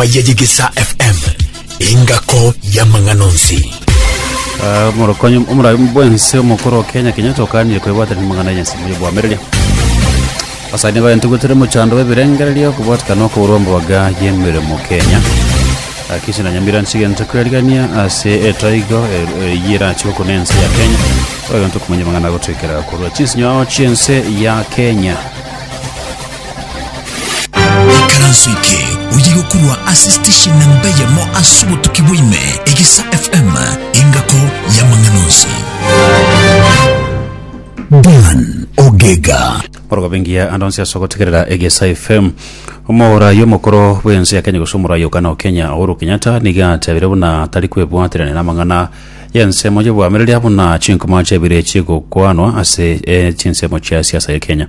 Maya Yegesa FM, engako y'amang'ana onsi. Ah, omorokonyi omorabi bwense omokoro wa kenya kenya tokanire kwebwatanira amang'ana y'ensemo y'obwamereria basani baye ntugutire mochando bw'ebirengererio kobwatikana okoborwa mboga y'emeremo kenya akisi na nyamira nchigento kwerigania ase etoigo eye erachi gokuna ense ya kenya oyo ntokumanya amang'ana agotwekera korwa chinsinyo ao chiense ya kenya Ekaranso eke oyia gokorwa ase station na mbeyemo ase obotuki bwaime Egisa FM engako y'amang'ana onsi. Dan Ogega. Orogobe ngiya ande onsi ase ogotegerera egesa fm omorayi omokoro bwensi ya kenya gose omorayi okana okenya uhuru kenyatta niga atebire buna tari kwebwaterania namang'ana yensemo yobwamireria buna chinkuma chebire chigokwanwa ase eh, chinsemo chia siasa ya kenya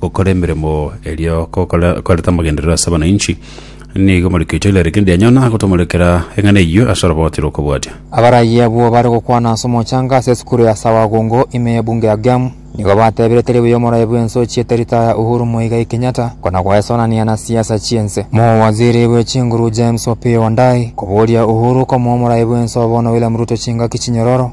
gokora emeremo eria gokora koreta amagenderero ase abananchi, nigo Mariko Tyler kende anyona agotomorekera eng'ana eyio ase oroboti rw'okobwatia. Abaraiyo abwo bare gokwana ase omochanga ase esukuru ya Sawagungu ime y'ebunge ya Gem, nigo batebire teri buya omoraia bw'ense ochiete ritaya Uhuru Muigai Kenyatta kona goesonania na siasa chi'ense. Mowaziri bwe chinguru James Opiyo Wandayi koboria Uhuru komoa omoraia bw'ense oo bono William Ruto chingaki chinyororo,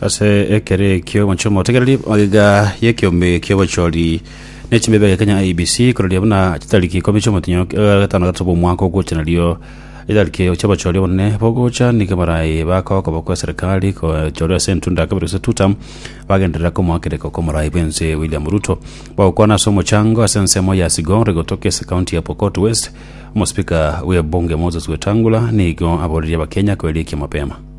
ase ekero ekio omochie omotegereri oiga y'ekeombe ki'obochori ne chimebe ya Kenya IEBC kororia buna chitariki ikomi chi'omotinyo eh, gatano gatato bw'omwaka ogocha nario etariki chi'obochori obonene bogocha nigo baraye bakoka bokwa eserikali kochorwa ase entunda ya kabere gose tutam bagenderera komoakereka kw'omorai bw'ense William Ruto bagokwana ase omochango ase ensemo ya Sigor egotoka ase county ya Pokot West omosipika bw'ebunge Moses Wetangula nigo aborerie abakenya koerekia mapema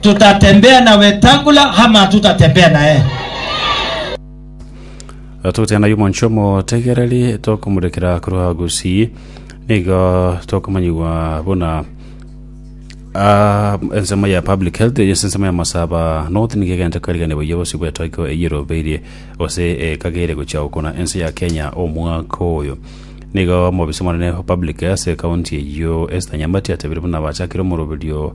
Tutatembea na Wetangula ama hatutatembea na eye. Togotebia ng'ai omonche omotegereri tokomurekera korwa gusii, nigo tokomanyigwa buna ah, ensemo ya public health ase ensemo ya masaba north nigo egente kwerigania boyia gose gwetoiko eyio erobeirie gose ekagere gochia gokona ense ya kenya omwaka oyo nigo omobisa omonene o public ase ekaunti eyio esther nyamati atebire buna bachakire omoroberio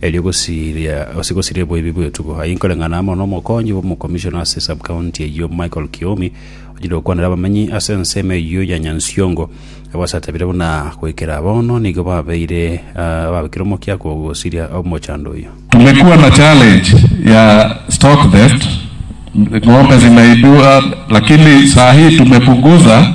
erio gosiria gose gosiria eboibi bw'etugo. Aye nkoreng'ana amo n'omokonyi bw'omokomishona ase sub-county eyio Michael Kiomi, onyare gokwanera abamenyi ase ensemo eyio ya Nyansiongo, abasaatabire buna goikera bono nigo babeire ababekire omokia kogosiria omochando oyio. Kumekuwa na challenge ya stock theft, ng'ombe zinaibiwa lakini saa hii tumepunguza.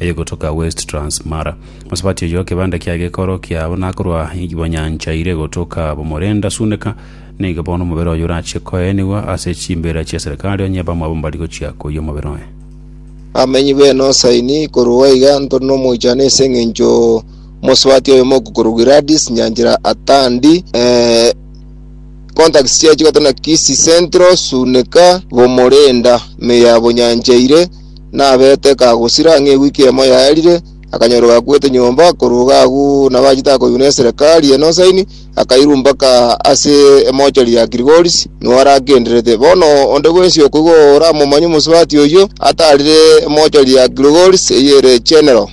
eye gotoka West Transmara. Mosabati oyo kebanda kia gekoro kiabo nakorwa igibo nyancha ire gotoka bomorenda suneka, nigo bono omobere oye orache koenigwa ase chimbera chia serikali onye bamwabo mbari gochia koyia omobere oye. Abamenyi b'Enosaini korwa iga ntore nomoichano ase engencho mosabati oyomo okokorwa Gladys Nyanchera Atandi, eh, contacts chiaye chigatana Kisii Central, Suneka, Bomorenda, Meyabo Nyancha ire, nabete kagosira ng'a ewiki emo yaerire, akanyorwa gakwete nyomba korwa iga agwo nabachete akoyuna eserekari ene osaini, akairwa mpaka ase emochari ya Girigoris, nigo aragendererete. Bono onde bwensi oko igo oramomanye omosubati oyio, atarire emochari ya Girigoris eyio ere Chenero.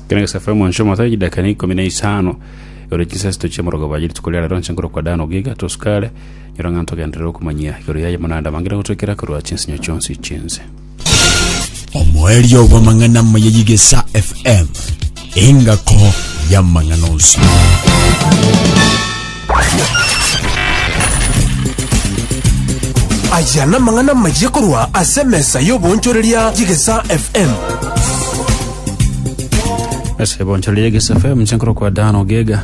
Ekero Yosefu are mwanso omoto chidakika na ikomi na isano, ore chinsasito chi'omorogoba ye rituko ria rero, inse nkorokwa Dan ogiga, tosukare, Nyora ng'a ntogenderere okomanyia igoro yaye buna ndamangere gotwekera korwa chinsinyo chionsi chinse. Omoerio bw'amang'ana amaya y'Igesa FM, engako y'amang'ana onsi. Aya namang'ana amaya korwa ase emesa y'oboonchoreria y'Igesa FM. Ase ebonchoreria y'Igesa FM, inche nkorokwa Dan Ogega.